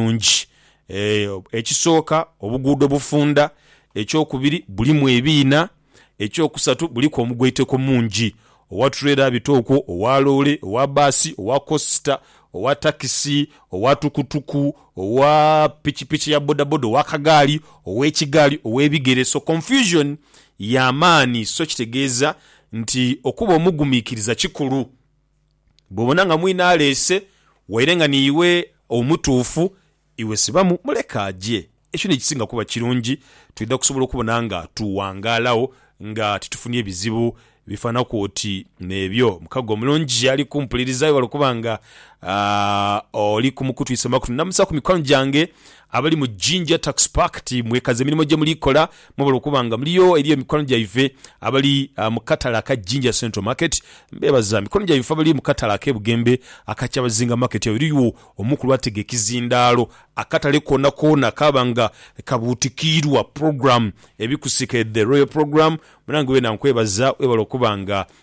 bulungi. Ekisooka obuguudo bufunda, ekyokubiri bulimu ebiina, ekyokusatu buliku omugwaiteko mungi. Owa tulera abita okwo, owa loole, owa bbaasi, owa kosita, owa takisi, owa tukutuku, owa pikipiki ya bodaboda, owa kagaali, ow'ekigaali, ow'ebigere. So confusion ya maani so kitegeeza nti okuba omugumiikiriza kikulu. Bw'obona nga mwine aleese, waire nga niiwe omutuufu, iwe sibamu muleke aje. Ekyo n'ekisinga kuba kirungi, twidha kusobola okubona nga tuwangaalagho nga titufunye bizibu bifaanaku oti n'ebyo. Mukago omulungi ali kumpuliriza, webale okuba nga oli kumukutwisa makutwe. Ndamusaku mikwano gyange Abali mu Jinja Tax Pact mwekaze emirimo gye muli kola mwebale okuba nga muliyo eri emikwano gyaife abali mu katale aka Jinja Central Market. Mbebaza mikono gyaibwe ife abali mu katale ake Bugembe aka Kyabazinga Market awo eriyo omukulu atega ekizindaalo akatale koona koona kaaba nga kabuutikiirwa program ebikusike the Royal Program. Munange weena nkwebaza webale okuba nga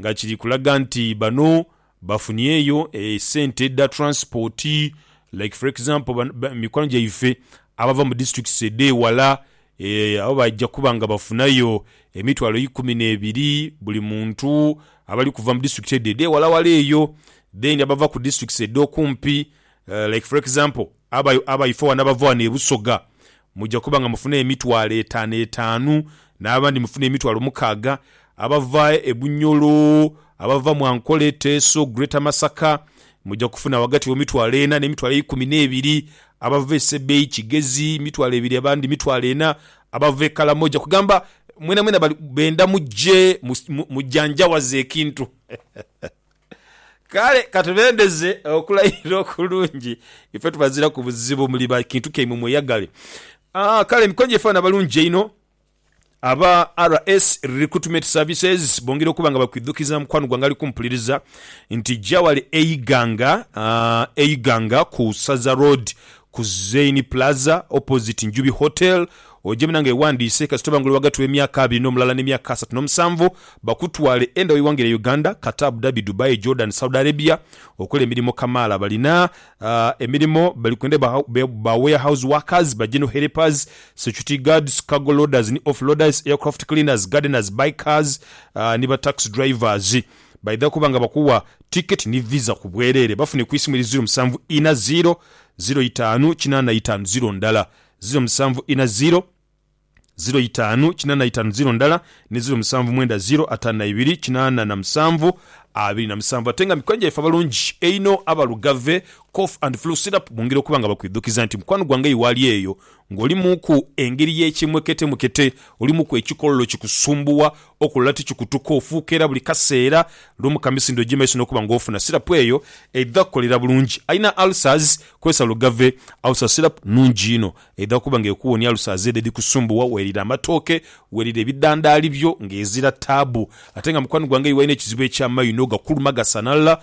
nga kiri kulaga nti bano bafunieyo esente dha transport like for example mikwano gyaife abava mu districts edhewala abo baja kuba nga bafunayo emitwalo eikumi nebiri buli muntu abali kuva mu district edho edhewalawala eyo then abava ku districts edhokumpi like for example abaife wano abava wano e Busoga Muja kuba nga mufuna emitwalo etaanu etaanu, n'abandi mufune emitwalo mukaaga, abava e Bunyoro, abava mu Ankole, Teso, Greater Masaka, muja kufuna ghagati wo mitwalo ena n'emitwalo eikumi n'ebiri, abava e Sebei, Kigezi, mitwalo ebiri abandi mitwalo ena, abava e Kalamoja, kugamba mwenamwena bali benda muje mujanjawaze ekintu. Kale ka tubendeze okulayira okulungi. Ife tubaziraku buzibu, muli ba kintu kyaimwe mweyagale. Aah kale emikonjo efaana abalungi einho. Aba RS Recruitment Services bongera okuba nga bakwidhukiza mukwano gwange ali kumpuliriza nti ja wale e Iganga, e Iganga ku Saza Road ku Zein Plaza opposite Njubi Hotel. Oje munange wewandiise kasita oba nga oli ghagati w'emyaka abiri n'omulala n'emyaka asatu n'omusanvu bakutwale enda w'eighanga lya Uganda, Qatar, Abu Dhabi, Dubai, Jordan, Saudi Arabia okola emirimo kamaala. Balina emirimo bali kwenda ba warehouse workers, ba general helpers, security guards, cargo loaders ni off loaders, aircraft cleaners, gardeners, bikers ni ba tax drivers. Baidha kuba nga bakuwa ticket ni visa ku bwerere. Bafune ku isimu eri ziro musanvu ina ziro ziro itaanu kinaana itaanu ziro ndala ziro musanvu ina ziro ziro itaanu kinana itaanu ziro ndala ni ziro musanvu mwenda ziro ataanu na ibiri kinana na musanvu abiri na musanvu ate nga mikwano gyaife abalungi einho aba Lugave Cough and Flu Syrup bongera okuba nga bakwidhukiza nti mukwano gwange eyo waali eyo nga olimuuku engeri y'ekimweketemwekete, olimuku ekikololo kikusumbuwa Okulala tikikutuka ofuuka era buli kaseera lumu ka misindho gye maiso n'okuba nga ofuna sirapu eyo eidha kukolera bulungi alina ulcers. Kozesa Lugave Ulcer Syrup, nnungi inho, eidha okuba nga ekuwonia ulcers edho edhikusumbuwa. Weerire amatooke, weerire ebidandaali byo ng'ezira taabu. Ate nga mukwano gwange iwe alina ekizibu eky'amaino gakuluma gasanalala,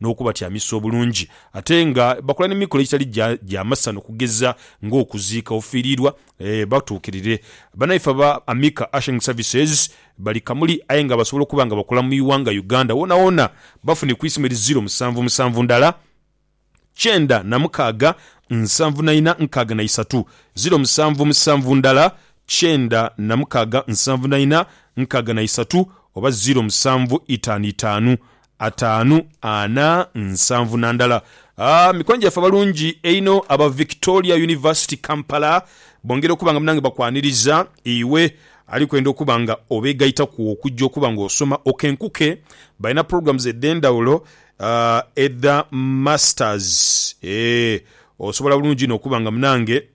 n'okubatyamisa obulungi ate nga bakola n'emikolo egitali gya masanhu okugeza ng'okuziika ofiiriirwa batuukirire. Bannaife aba Amika Ushering Services bali Kamuli aye nga basobola okuba nga bakola mu ighanga Uganda woonawoona bafune ku isimu eri ziro musanvu musanvu ndala kyenda na mukaaga nsanvu na ina nkaaga na isatu, ziro musanvu musanvu ndala kyenda na mukaaga nsanvu na ina nkaaga na isatu oba ziro musanvu itaanu itaanu Ataanu, ana, nsanvu na ndala. Aah mikwano gyaffe abalungi einho aba Victoria University Kampala bongera okuba nga munange bakwaniriza iwe ali kwenda okuba nga obegaitaku okujja okuba nga osoma okenkuke. Balina programs edhendhawulo edha masters eeh osobola bulungi inho okuba nga munange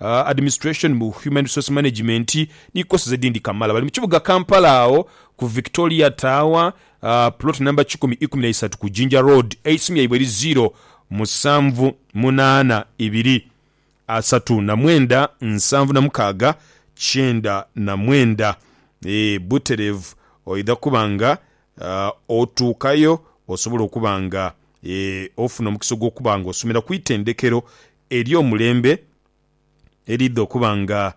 Administration mu Human Resource Management ni courses edindi Kamala. Bali mu kibuga Kampala agho ku Victoria Tower, plot number kikumi ikumi na isatu ku Jinja Road. Eisimu lyaibwe eri ziro musanvu munaana ibiri asatu na mwenda nsanvu na mukaaga kyenda na mwenda. Eeh butereevu oidha kuba nga otuukayo osobola okuba nga ofuna omukisa ogw'okuba nga osomera ku itendekero Eri omulembe eriidha okuba nga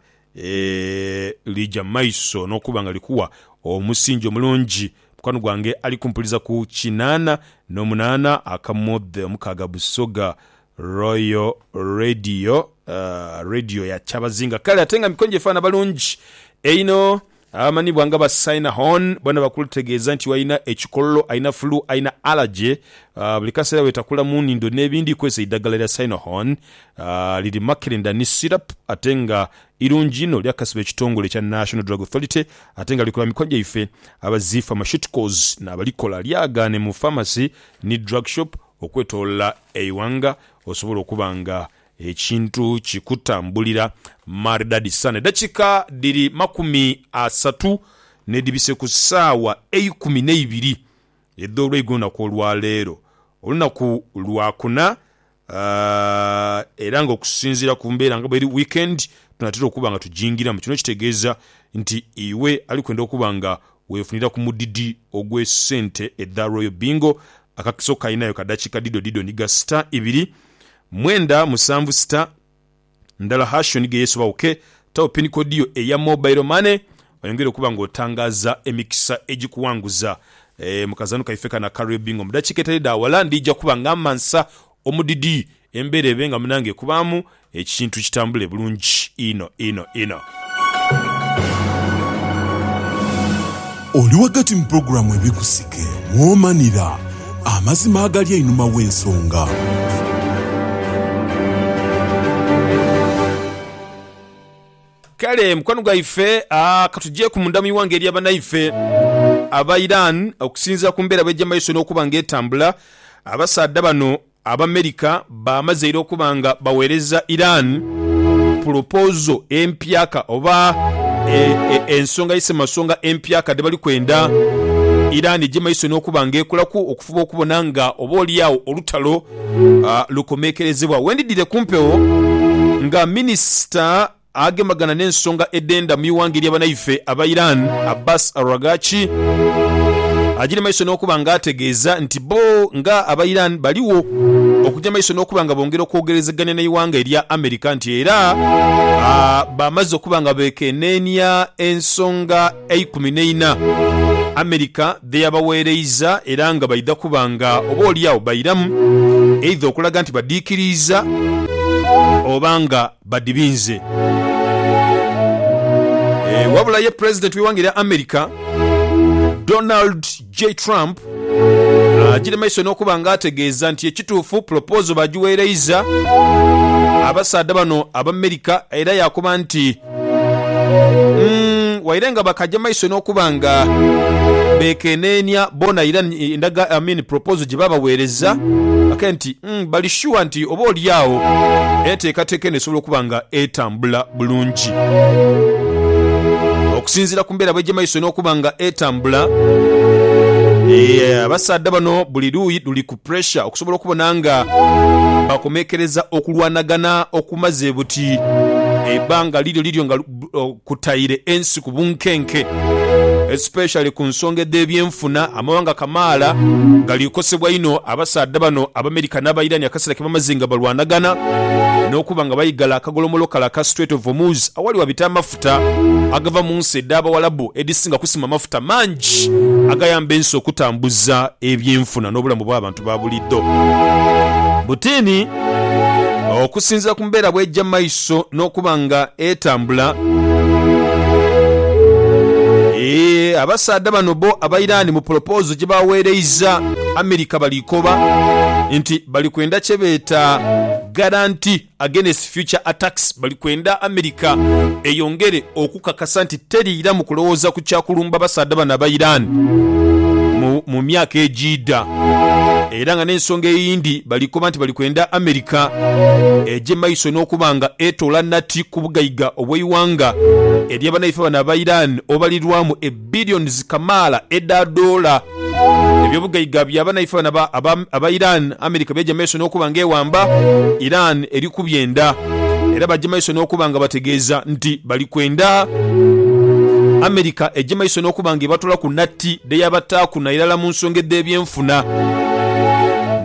lija mu maiso n'okuba nga likuwa omusingi omulungi. Mukwano gwange ali kumpuliza ku kinaana n'omunaana akamodhe omukaaga Busoga Royal Radio, Radio ya Kyabazinga. Kale ate nga mikonjo efaana balungi einho. Abamanhibwa nga ba Saina Horn bona bakutegeeza nti alina ekikololo, alina fulu, alina alaje, buli kaseera wetakula mu nhindo n'ebindi. Kozesa eidhagala lya Saina Horn. Liri makerenda ni syrup ate nga irungi inho. Lyakasibwa ekitongole ekya National Drug Authority ate nga likola mikono gyaife aba Zee Pharmaceuticals n'abalikola. Lyagaane mu pharmacy ni drug shop okwetolola eighanga osobola okuba nga Ekintu kikutambulira maridadi sana. Edakika dhiri makumi asatu nedhibise ku saawa eikumi neibiri edholweigo olunaku olwaleero, olunaku lwakuna, era nga okusinziira ku mbeera nga bweri weekend tunatera okuba nga tujingiramu. Kino kitegeeza nti iwe alikwenda okuba nga wefunira ku mudidi ogwe sente edha Royal Bingo, akakiso kalinayo ka dakika dhidho dhidho ni ga star ibiri Mwenda musanvu sita ndala hashoni ge yeesobagho ke tagho pini kodi yo eya mobayiro mane. Oyongere okuba nga otangaaza emikisa egikuwanguza mu kazaanho kaife kano aka Real Bingo. Mu dakiika etali dha wala ndija kuba nga mmansa omudidi embeera ebe nga munange ekubaamu ekintu kitambule bulungi inho inho inho. Oli ghagati mu pulogulaamu Ebikusike mw'omanira amazima agali einhuma w'ensonga. Kale mukwano gwaife ka tujeeku munda mu ighanga erya banaife aba Iran. Okusinziira ku mbeera bw'eja mu maiso n'okuba nga etambula, abasaadha bano Abamerika baamazeire okuba nga bawereza Iran pulopozo empyaka oba ensonga isemasonga empyaka dhebali kwenda Iran gye maiso n'okuba nga ekolaku okufuba okubona nga oba olyagho olutalo lukomekerezebwa. Wendidhire ku mpewo nga minisita Agemagana n'ensonga edhenda mu ighanga erya banaife aba Iran, Abbas Araghchi agire maiso n'okuba nga ategeeza nti bo nga aba Iran baligho okuja maiso n'okuba nga bongera okwogerezegania n'eighanga erya America nti era bamaze okuba nga bekeneenia ensonga eikumi n'eina America dheyabaweereiza era nga baidha kuba nga oba oli agho bairamu eidha okulaga nti badiikiriiza oba nga badibinze. Eeh wabula ye president we wanga erya America Donald J Trump agire maiso nokuba nga ategeeza nti ekituufu proposal bagiwereiza abasaadha bano abamerica era yakoba nti umm waire nga bakaja maiso nokuba nga bekeneenia boona Iran endaga I mean proposal gyebabawereza ake nti Bali shuwa nti oba oli agho enteekateeka eno esobola okuba nga etambula bulungi. Okusinziira ku mbeera bw'eja maiso n'okuba nga etambula, abasaadha bano buli luuyi luli ku puresha okusobola okubona nga bakomekereza okulwanagana okumaze buti ebbanga liryo liryo nga kutaire ensi ku bunkenke especially ku nsonga edh'ebyenfuna. Amawanga kamaala gali kosebwa inho abasaadha bano Abamerika n'Abairani akaseera ke bamaze nga balwanagana n'okuba nga baigala akagolomolo kale aka Strait of Hormuz awali wabita amafuta agava mu nsi edh'Abawalabu edhisinga kusima amafuta mangi agayamba ensi okutambuza ebyenfuna n'obulamu bw'abantu. babulido. Butini, Okusinzira ku mbeera bw'eja maiso n'okuba nga etambula, abasaadha bano bo aba Iran mu pulopoozo gye baaweereiza Amerika bali koba nti bali kwenda kye beeta garanti. Against Future Attacks bali kwenda America eyongere okukakasa nti teriiramu kulowooza ku kya kulumba basaadha bano aba Iran mu mu myaka egiidha era nga n'ensonga eyindi bali koba nti bali kwenda America egye maiso n'okuba nga etoola nati ku bugaiga obw'eighanga erya banaife bano aba Iran obalirwamu billions kamaala edha doola. Ebyobugaiga bya banaife bano aba aba Iran, America byaja mumaiso n'okuba nga ewamba Iran eri ku byenda era baja mumaiso n'okuba nga bategeeza nti bali kwenda America eje mumaiso n'okuba nga ebatolaku natti dheyabataaku nairala mu nsonga edh'ebyenfuna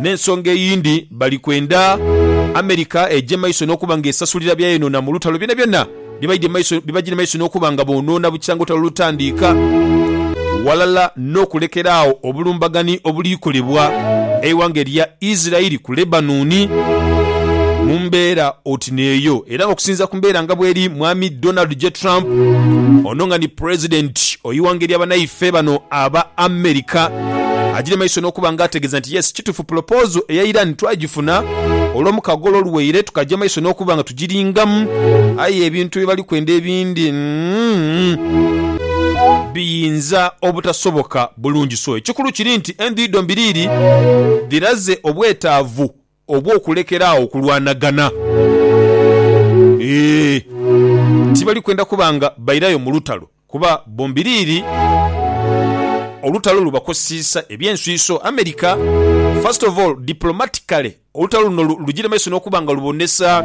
n'ensonga eyindi bali kwenda America eje mumaiso n'okuba nga esasulira byayonoona mu lutalo byonabyona. bibaidhire maiso n'okuba nga boonoona bukya nga olutalo lutandiika, ghalala n'okulekera agho obulumbagani obuliikolebwa eighanga erya Isiraeli ku Lebanoni. Mu mbeera oti n'eyo, era nga okusinziira ku mbeera nga bweri, Mwami Donald J. Trump, ono nga ni Pulezidenti ow'ighanga erya banaife bano aba America, aidhire maiso n'okuba nga ategeeza nti, Yes, kituufu pulopozo eya Iran twagifuna olw'omukago olwo oluwaire, tukaja maiso n'okuba nga giringamu, aye ebintu bye bali kwenda ebindi biyinza obutasoboka bulungi. So ekikulu kiri nti endhuyi dhombiri iri dhiraze obwetaavu obw'okulekera agho okulwanagana. Eeh, tibali kwenda kuba nga bairayo mu lutalo. Kuba bombiriri olutalo lubakoseisa eby'enswiso. America, first of all, diplomatically, olutalo luno lugire maiso n'okuba nga lubonesa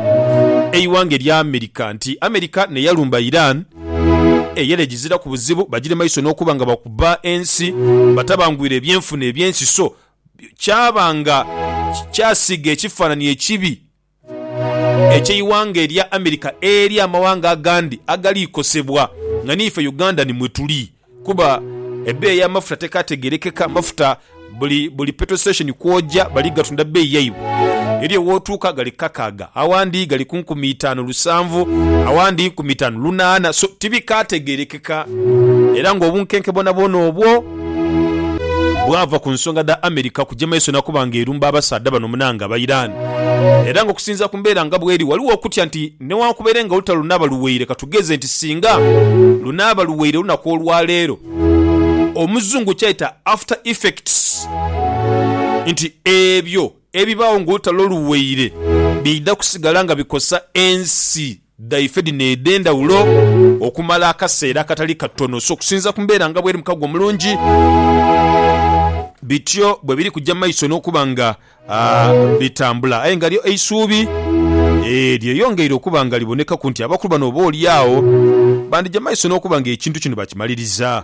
eighanga erya America nti America n'eyalumba Iran eyali egiziraku buzibu, bagire maiso n'okuba nga bakuba ensi, batabangwire ebyenfuna eby'ensi so kyaba nga kyasiiga ekifanhanhi ekibi Eky'eighanga erya America eri amawanga agandi agali kosebwa nga n'ife Uganda ni mwe tuli kuba ebbeeyi y'amafuta tekaategerekeka. Mafuta buli buli petrol station kw'oja bali gatunda bbeeyi yaibwe. Eriyo w'otuuka gali kakaaga, awandi gali ku nkumi itaanu lusanvu, awandi nkumi itaanu lunaana. So tibikaategerekeka era ng'obunkenke bwonabwona obwo. bwava ku nsonga dha America kuja maiso na kuba nga erumba abasaadha bano munange aba Iran era nga okusinzira ku mbeera nga bweri waliwo okutya nti newankubere nga olutalo lunaaba luweire katugeze nti singa lunaaba luweire olunaku olwaleero omuzungu kyayita after effects nti ebyo Ebibaagho ng'olutalo luweire biidha kusigala nga bikosa ensi dhaife dhino edh'endhawulo okumala akaseera akatali katono. So okusinziira ku mbeera nga bweri mu kago omulungi, bityo bwe biri kuja mu maiso n'okuba nga bitambula. Aye nga lyo eisuubi lyeyongeire okuba nga libonekaku nti abakulu bano oboolyawo bandija mu maiso n'okuba ng'ekintu kino bakimaliriza.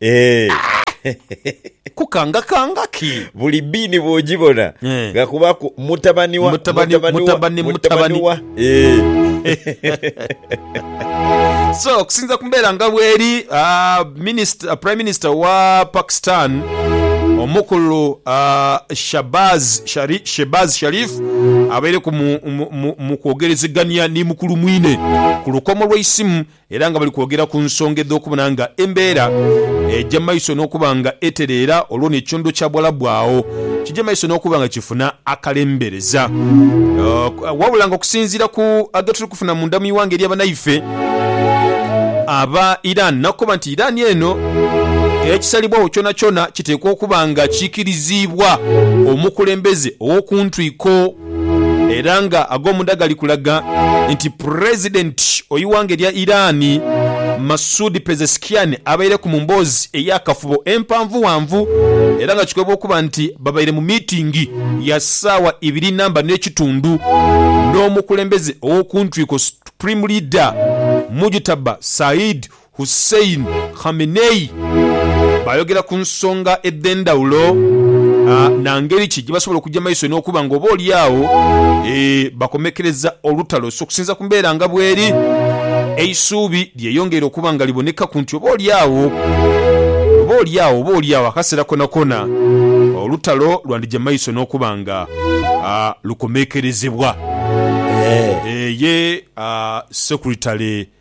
Eeh. Kukanga kanga ki? Buli biini bwojibona Eh. nga kubaku mutabani wa Mutabani- wa, mutabani- mutabani. wa. Eeh. So okusinza ku mbeera nga bweri ah, minist- ah, prime minister wa Pakistan omukulu ah, Shabaz Shari- Shehbaz Sharif abaire ku mu- mu- mu- mu kwogerezegania ni mukulu mwine ku lukomo lweisimu era nga bali kwogera ku nsonga edh'okubona nga embeera eja maiso n'okuba nga etereera olwo n'ekyondo kya Buwalabu agho kija maiso n'okuba nga kifuna akalembereza. Wabula nga okusinziira ku agetuli kufuna munda mu ighanga erya banaife aba Iran nakoba nti Iran eno ekisalibwagho kyonakyona kiteekwa okuba nga kiikiriziibwa omukulembeze ow'okuntwiko. era nga ag'omunda gali kulaga nti Pulezidenti ow'ighanga erya Iran, Masoud Pezeshkian abaireku mu mboozi ey'akafubo empanvughanvu era nga kikolebwa okuba nti babaire mu miitingi ya saawa ibiri namba n'ekitundu n'omukulembeze ow'okuntwiko, Supreme Leader, Mujtaba Saeed. Hussein Khamenei baayogera ku nsonga edh'endhawulo na ngeri ki gye basobola okugya mu maiso n'okuba nga oba oli agho bakomekereza olutalo. So okusinziira ku mbeera nga bweri, eisuubi lyeyongeire okuba nga libonekaku nti oba oli agho, oba oli agho, oba oli agho akaseera konakoona olutalo lwandija mu maiso n'okuba nga lukomekerezebwa. Ye Secretary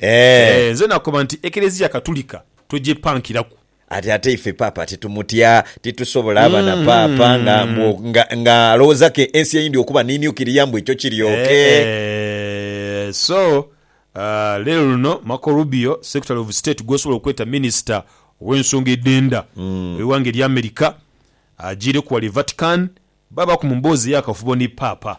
Eeh. Eeh, nze nakoba nti Eklezia Katulika togyepankiraku. Ati ate ife Paapa titumutya, titusobola aba na Paapa nga mbu o, nga, nga alowooza ke ensi eyindi okuba ni nuclear mbu ekyo kiryooke. Eeh, so, aah, leero luno Marco Rubio, Secretary of State gwosobola okweta Minister ow'ensonga edh'enda ow'eighanga erya America, ajiireku ghale e Vatican Baabaku mu mboozi ey'akafubo ni Paapa.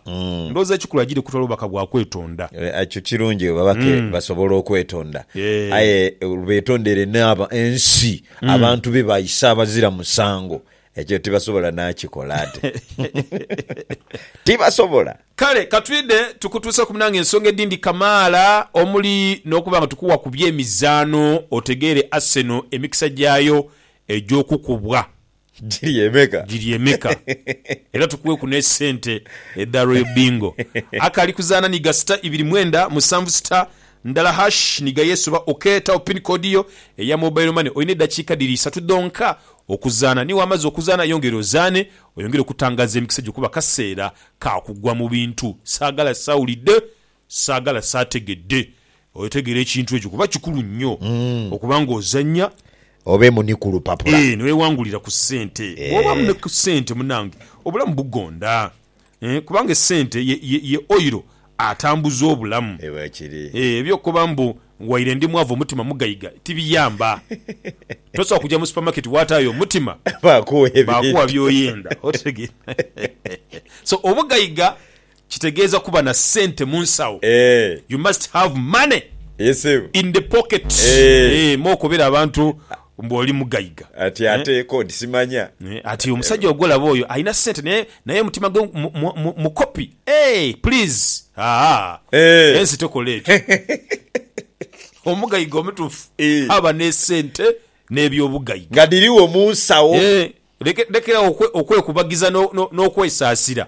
Ndowooza ekikulu aidhire kutwala bubaka bwa kwetonda. Ekyo kirungi, ababake basobola okwetonda aye betondere n'aba ensi, abantu be baise abazira musango. Ekyo tibasobola n'akikola ate. Tibasobola. Kale ka twidhe tukutuuseku munaange ensonga edhindi kamaala omuli n'okuba nga tukuwa ku by'emizaano otegeere Arsenal emikisa gyayo egy'okukubwa. Giri emeka? Giri emeka? Era tukuweku ne sente edha Royal Bingo. Akali kuzaana ni ga sita ibiri mwenda musanvu sita ndala hash ni ga yesuba ok tagho pin code yo eya mobile money olina edakiika dhiri isatu dhonka okuzaana ni wamaze okuzaana yongera ozaane oyongere okutangaza emikisa gyo kuba kaseera ka kugwa mu bintu saagala sawulidde Saagala saategedde. Otegeera ekintu ekyo kuba kikulu nnyo okuba ng'ozannya. Obeemu ni ku lupapula. Eeh, ni weewangulira ku ssente. Bw'obaamu ni ku ssente munnange obulamu bugonda. Eeh, kubanga essente ye, ye, ye oyiro atambuza obulamu. Eeh, bwekiri. Eeh, eby'okukoba mbu, waire ndi mwavu omutima mugaiga, tibiyamba. Tosobola kuja mu supamaketi waataayo omutima. Baakugha ebintu. Baakugha by'oyenda. Otegeera? So, obugaiga Kitegeeza kuba na sente munsawo. You must have money in the pocket eeh mwokobera abantu mbu oli mugaiga eeh. Ati omusajja ogwolaba oyo alina sente naye naye omutima gwe mukopi eeh please haa ensi tekola ekyo. Omugaiga omutuufu aba nesente nebyobugaiga eeh. Lekerawo okwekubagiza nokwesaasira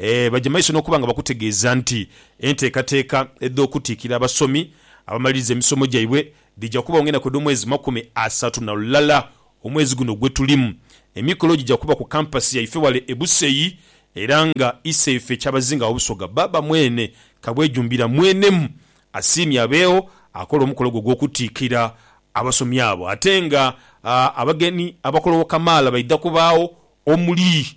Ee, baja maiso n'okuba nga bakutegeeza nti enteekateeka edh'okutiikira abasomi abamaliriza emisomo gyaibwe dhija kubagho ng'enaku edh'omwezi makumi asatu na lulala omwezi guno gwe tulimu. Emikolo gija kuba ku kampasi yaife ghale e Busei era nga Iseife Kyabazinga wa Busoga, Bbaabba Mwene Kabwejumbira mwenemu asiimye abeegho akola omukolo ogwo ogw'okutiikira abasomi abo ate nga abagenyi abakologho kamaala baidha kubaagho omuli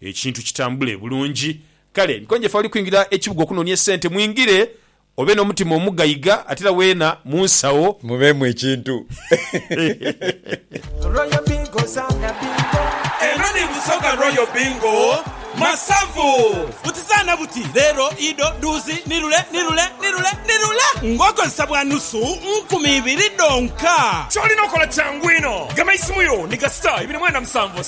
ekintu kitambule bulungi. Kale nkonje fe abali kwingira ekibuga okunonia esente mwingire obe nomutima omugaiga ate era wena munsawo. Mubeemu ekintu. Royal Bingo zaana bingo. Eno ni Busoga Royal Bingo Masavu. Buti zaana buti, leero, ido, dhuuzi, nirule, nirule, nirule, nirule ng'okozesa bwa nusu nkumi ibiri dhonka. Ky'olina okola kyangu inho. Gamaisimu yo ni ga star ibiri mwenda musanvu,